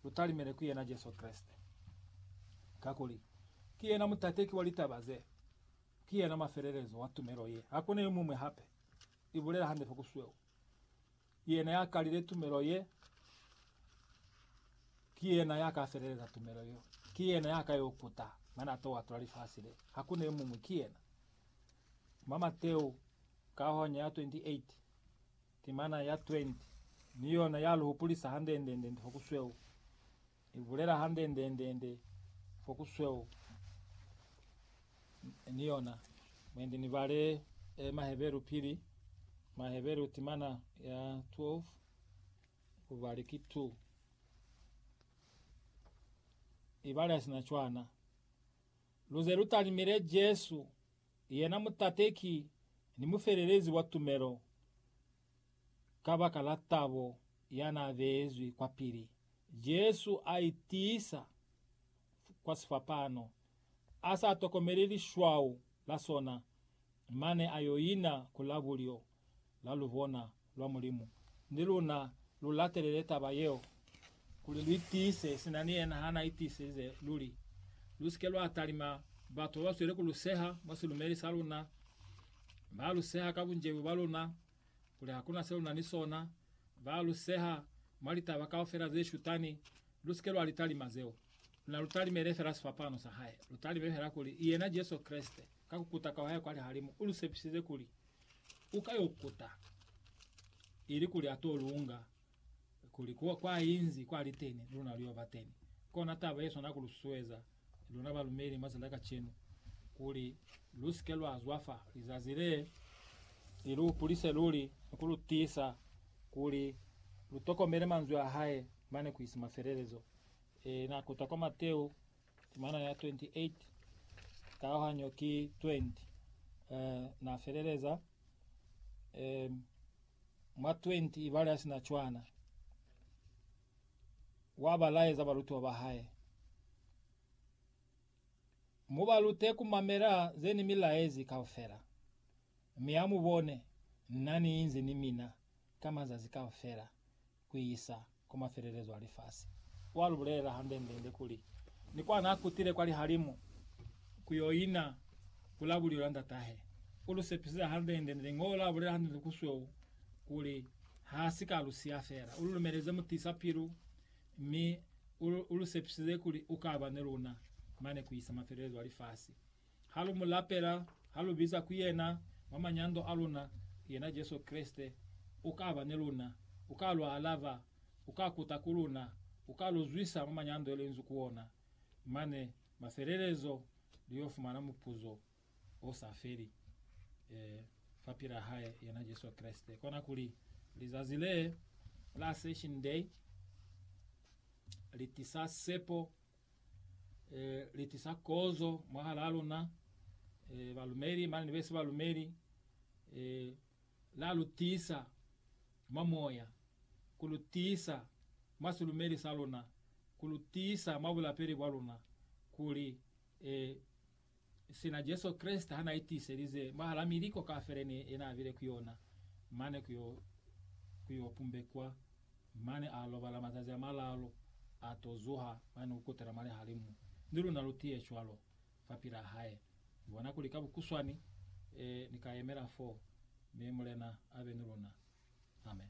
Lutalimele ku yena Jesu Kreste, kakuli ki yena mutateki wa litaba ze, ki yena mafelelezo wa tumelo ye. Hakuna yomuñwi hape, ibulela hande fa ku sweu. Yena ya kalile tumelo ye, ki yena ya ka feleleza tumelo yo. Ki yena ya ka yo kuta mane a to atula lifasi le. Hakuna yomuñwi, ki yena. Mwa Mateu, kaohanya ya 28. Timana ya 20 ni yona ya lu hupulisa hande-nde-nde fo ku sweu, i bulela hande-nde-nde fo ku sweu ni yona. Mwendi ni bale e Maheberu pili, Maheberu timana ya 12 ku bali ki 2. I bale sina cwana. Lu ze lu talimile Jesu. Yena mutateki ni mufelelezi wa tumelo kabaka la tabo ya n'a beezwi kwapili, Jesu a itiisa kwa sifapano, a sa tokomeli lishwau la sona, mane a yo ina ku la bulyo. la lubona lwa Mulimu, ni luna lu latelele taba yeo kuli lu itiise sina ni yena ha na itiisize luli. Lu si ke lwa talima batu ba ba zweli ku lu seha mwa silumeli sa luna, ba lu seha ka bunjebu bwa luna, kuli ha ku na se lu na ni sona, ba lu seha mwa litaba kaufela ze shutani. Lu si ke lwa li talima zeo. Luna lu talimele fela sifapano sa hae. Lu talime fela kuli, i yena Jesu Kreste, ka ku kuta kwa hae kwa lihalimu, u lu sepisize kuli, u ka yo kuta, ili kuli a to lunga, kuli kwa, kwa inzi kwa li teni, luna lu yo ba teni. Kona taba ye swana ku lu susueza luna balumeli mwa za kacenu, kuli lu si ke lwa zwafa lizazi le, li lu hupulise luli ni ku lu tiisa kuli lu tokomele manzwi a hae mane ku isi mafelelezo. E, na kuta kwa Mateo Temana ya 28, kalohanyo ki 20. Eh, na feleleza, eh, mwa 20 ibale a sina cwana, wa ba laeza balutiwa ba hae, Mu ba lute ku mamela ze ni mi laezi kaufela, mi ha mu bone, Na ni inzi ni mina ka mazazi kaufela, kuisa kwa mafelelezo a lifasi. Wa lu bulelela hande-nde-nde kuli, Ni kwa n'a kutile kwa lihalimu ku y'o ina ku la bulilo la Ndat'ahe. U lu sepisize hande-nde-nde Liñolo la bulela hande-nde ku sweu kuli ha si ka lu siya fela. U lu lumeleze mutisa-pilu mi u lu sepisize kuli u ka ba ni luna mane kuisa mafelelezo a lifasi. Ha lu mu lapela, ha lu biza ku yena mwa manyando a luna, yena Jesu Kreste, u ka ba ni luna. U ka lu alaba. U ka kuta ku luna. U ka lu zwisa mwa manyando yeo lu inzi ku ona. Mane, mafelelezo, lu yo fumana mupuzo o sa feli, ee, fapil'a hae, yena Jesu Kreste. Kona kuli, lizazi le la Ascension Day li tisa sepo e, li tisa kozo mwahalaa luna, e, balumeli mane ni besi balumeli, e, la lu tisa mwa moya, ku lu tisa mwa silumeli sa luna, ku lu tisa mwa bulapeli bwa luna, kuli e, Sina Jesu Kreste ha na itiiselize mwahala miliko kaufela ne yena abile ku yona, mane ku yo ku yo pumbekwa, mane a lobala mazazi a malaalu, a to zuha, mane ku kutela mwa lihalimu, ni luna lu tiye cwalo fapilaa hae. Ni bona kuli ka bukuswani, e, ni ka yemela foo, mi Mulena abe ni luna. Amen.